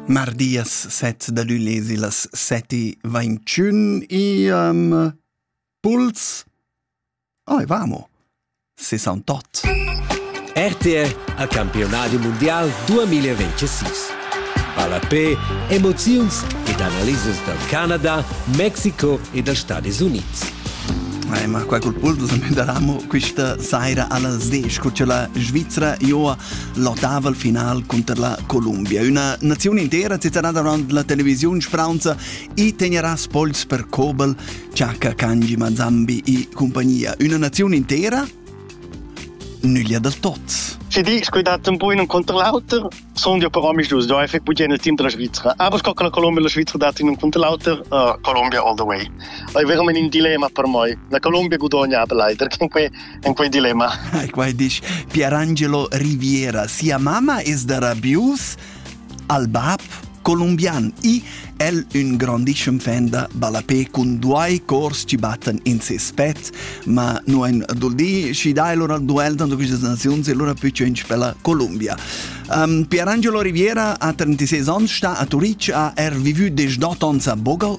Mardias set da lü lezi las seti ventschün iam puls Oi, vamo! 68 RTR a Campionadi Mondial 2026 Palapé, emoziuns ed analisas dal Canada, Mexico e dals Stadis Unids. Eh, ma qua col puls me daramo questa saira allas 10 cu c'è la Svizzera Joa l'otaval final cunter la Columbia. Üna naziun intera zitterà davant la televisiun spraunza i tegnerà spols per Kobel, Chaka Kanji Mazambi e compagnia. Üna naziun intera nüglia dal tot. Si di scuidat un po in un contro l'auter, sono io però mi giusto, ho effect bugen il team della Svizzera. Aber scocca la Colombia e la Svizzera dati in un contro l'auter, uh, Colombia all the way. È veramente in dilemma per me. La Colombia guadagna aber leider, che in quei dilemma. Ai quai dici Pierangelo Riviera, sia mamma es da Rabius, al bab colombian i el un grandissime fan da ballapé con due cors ci batten in ses pet ma no ein duldi ci dai loro al duel tanto queste nazioni allora più c'è in la Colombia um, Pierangelo Riviera a 36 ans sta a Turic a er vivu des 18 ans a Bogal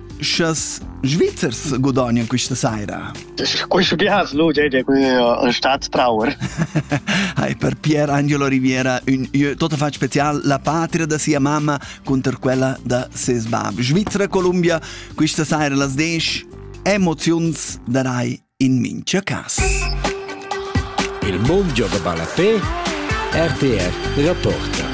Sches Svizzers gudagnan questa saira? Questo bias luce è un staatstrauer. Hai per Pier Angelo Riviera un tutto fa special la patria da sia mamma contro quella da ses bab. Svizzera Columbia questa saira las 10 emozions da rai in mincha cas. Il mondo gioca balapè RTR Rapporta.